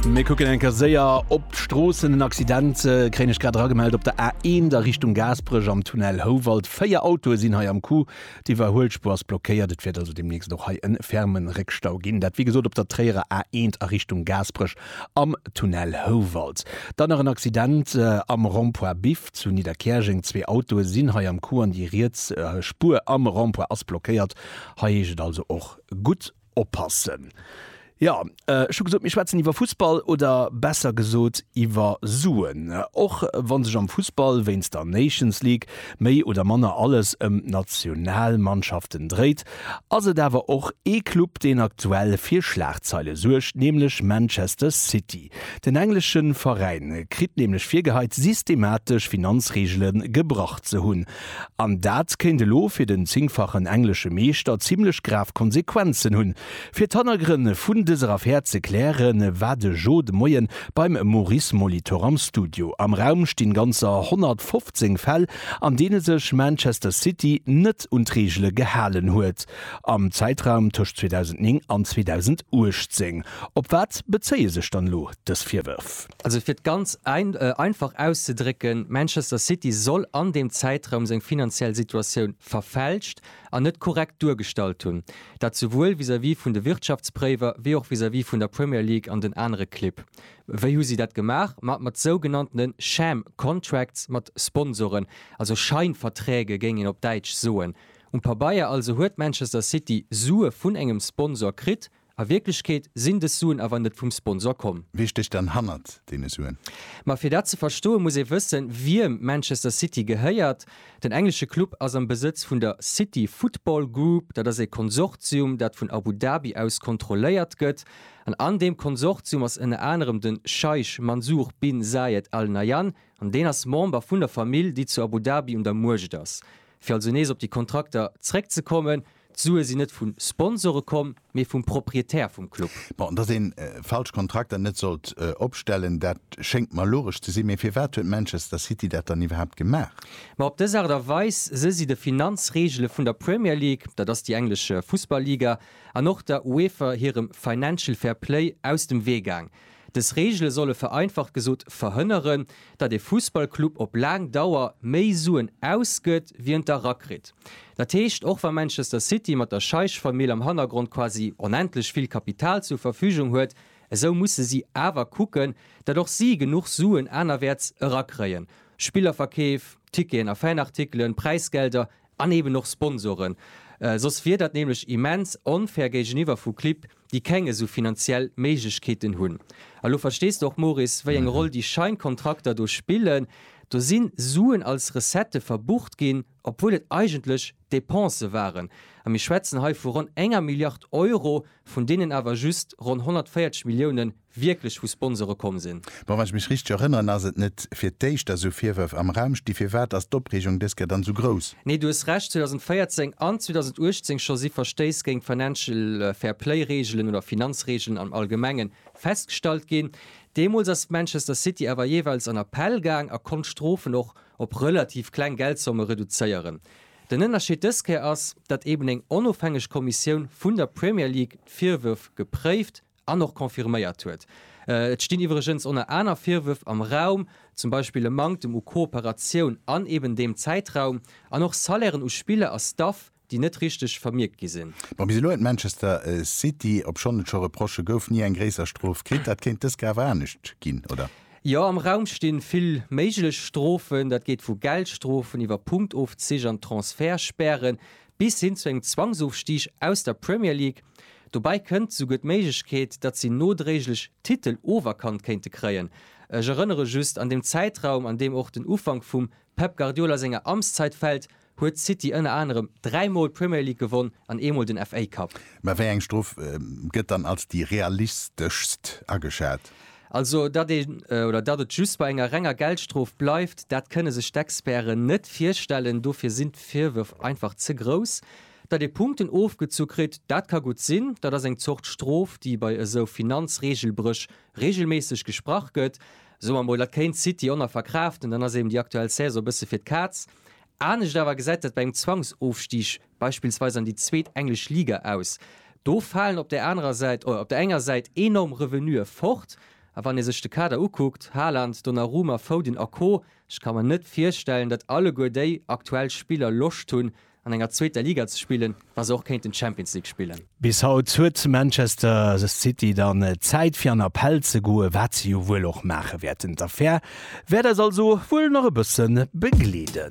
Mir kucken eng Ker séier op d'Stroossen. En Accident äh, kréien ech grad eragemellt op der A1 der Richtung Gaasperech am Tunnel Houwald. Véier Autoe sinn hei am Coup. D'Iwwerhuelspuer ass blockéiert. Et wäert also demnächst och hei en fermen Réckstau ginn. Dat wéi gesot op der Tréierer A1 a Richtung Gaasperech am Tunnel Houwald. Dann nach en Accident äh, am Rond-point Biff zu Nidderkäerjeng. Zwee Autoe sinn hei am Coup an déi riets äh, Spuer am Rond-point ass blockéiert. Hei heescht et also och gutt oppassen. Jo, ech hu gesot, mir schwätzen iwwer Fussball oder besser gesot iwwer Suen. Och wa sech am Fussball wéinst der Nations League méi oder manner alles ëm d'Nationalmannschaften dréit, ass et awer och ee Club, deen aktuell fir Schlagzeile suergt, nämlech Manchester City. Den englesche Veräin kritt nämlech virgeheit, systematesch Finanzreegele gebrach ze hunn. An dat kéint elo fir den zéngfachen englesche Meeschter zimmlech grav Konsequenzen hunn. Fir d'Hannergrënn vun dëser Affär ze klären, war de Joe de Moien beim Maurice Molitor am Studio. Am Raum stinn ganzer 115 Fäll, an deene sech Manchester City net un d'Reegele gehalen huet am Zäitraum tëscht 2009 an 2018. Op wat bezéie sech dann elo dës Virwërf? Also fir et ganz einfach auszedrécken, Manchester City soll an deem Zäitraum seng finanziell Situatioun verfälscht an net korrekt duergestallt hunn. Dat souwuel vis-à-vis vun de Wirtschaftspréiwer wéi och vis-à-vis vun der Premier League an den anere Clibb. Wéi hu si dat gemaach? Ma mat sougenanntene sham contracts, mat Sponsoren, also Scheinverträge géing een op Däitsch soen. Um Pabeier also huet Manchester City Sue vun engem Sponsor kritt, A Wierklechkeet sinn dës Suen awer net vum Sponsor komm. Wie stécht dann hannert deene Suen? Ma fir dat ze verstoen, muss ee wëssen, wiem Manchester City gehéiert. Den englesche Club ass am Besëtz vun der City Football Group. Dat ass ee Konsortium, dat vun Abu Dhabi aus kontrolléiert gëtt. An an deem Konsortium ass ënner anerem de Scheich Mansour bin Zayed Al Nahyan. An deen ass Member vun der Famill, déi zu Abu Dhabi un der Muecht ass. Fir also nees op déi Kontrakter zeréckzekommen. D'Sue sinn net vu Sponsore komm, mee vum Proprietär vum Club. Bon, dass een falsch Kontrakter net sollt opstellen, dat schéngt mer logesch ze sinn, mee firwat huet Manchester City dat dann iwwerhaapt gemaach? Ma op dës Aart a Weis si si de Finanzreegele vun der Premier League, dat ass déi englesch Fussball-Liga, an och der UEFA hirem Financial Fair Play aus dem Wee gaang. Dës Reegele solle vereinfacht gesot verhënneren, datt ee Fussballclub op laang Dauer méi Suen ausgëtt, wéi en d'erakritt. Dat heescht, och wa Manchester City mat der Scheich-Famill am Hannergrond quasi onendlech vill Kapital zur Verfügung huet, esou musse si awer kucken, datt och si genuch Suen anerwäerts erakréien, Spillerverkeef, Ticketen a Fanartikelen, Präisgelder An eben och Sponsoren. Soss wier dat nämlech immens onfair géigeniwwer vu Clibb, déi keng esou finanziell Méiglechkeeten hunn. A lo verstees de och, Moris, wéi eng Roll déi Scheinkontrakter do spillen. Do si Suen als Recettë verbucht ginn, obwuel et eigentlech Depensë waren. A mir schwätzen hei vu ronn enger Milliard Euro, vun deenen awer just ronn 140 Milliounen wierklech vu Sponsore komm sinn. Bon, wann ech mech richteg erënneren, ass et net fir d'éischt, dass esou Virwërf am Raum sti. Firwat ass d'Opreegung dës Kéier dann esou grouss? Nee, du hues Recht, 2014 an 2018 scho si Verstéiss géint d'Financial Fair Play Reegelen oder Finanzreegelen am Allgemenge festgestallt ginn. Deemools ass Manchester City awer jeeweils an Appell gaang a konnt d'Strofen och op relativ kleng Geldsomme reduzéieren. Den Ënnerscheed dës Kéier ass, datt eben eng onofhängeg Kommissioun vun der Premier League d'Virwërf gepréift an och confirméiert huet. Et stinn iwwregens oner aner Virwërf am Raum, zum Beispill e Manktem u Kooperatioun an eben deem Zäitraum, an och Salairen u Spiller a Staff, déi net richteg vermierkt gi sinn. Bon, bis elo huet Manchester City, obschonn et scho Reprochë gouf, ni eng gréisser Strof kritt. Dat kéint dës Kéier awer anescht ginn, oder? Jo, am Raum sti vill méiglech Strofen. Dat geet vu Geldstrofen iwwer Punktofzich an Transfertspäre bis hin zu engem Zwangsofstig aus der Premier League. Dobäi kënnt souguer d'Méiglechkeet, datt si nodréiglech d'Titel oferkannt kéinte kréien. Ech erënnere just, an deem Zäitraum, an deem och den Ufank vum Pep Guardiola senger Amtszeit fält, huet City ënner anerem dräi Mol d'Premier League gewonn an ee Mol den FA Cup. Mä wéi eng Strof gëtt dann als déi realisteschst ageschat? Also datt een, oder datt et just bei enger renger Geldstrof bleift, dat kënne sech d'Experten net virstellen, dofir sinn d'Virwërf einfach ze grouss. Datt ee Punkten ofgezu kritt, dat ka gutt sinn, dat ass eng Zort Strof, déi bei esou Finanzreegelbréch reegelméisseg gesprach gëtt. Soe mer mol, dat kéint d'City Honor verkraaften, dann ass eben déi aktuell Saison e bësse fir d'Kaz. Anescht awer gesäit dat bei engem Zwangsofstig beispillsweis an déi zweet englesch Liga aus, do falen op där anerer Säit, op der enger Säit enorm Revenue fort, a wann ee sech de Kader ukuckt, Haaland, Donnarumma, Foden a Co, ech ka mer net virstellen, datt alleguer déi aktuell Spiller Loscht hunn, an enger zweeter Liga ze spillen, wa se och kéinten d'Champions League spillen. Bis haut huet zu Manchester City dann Zäit fir an Appell ze goen, wat se jo wuel och maache wäerten. D'Affär wäert eis also wuel nach e bësse begleeden.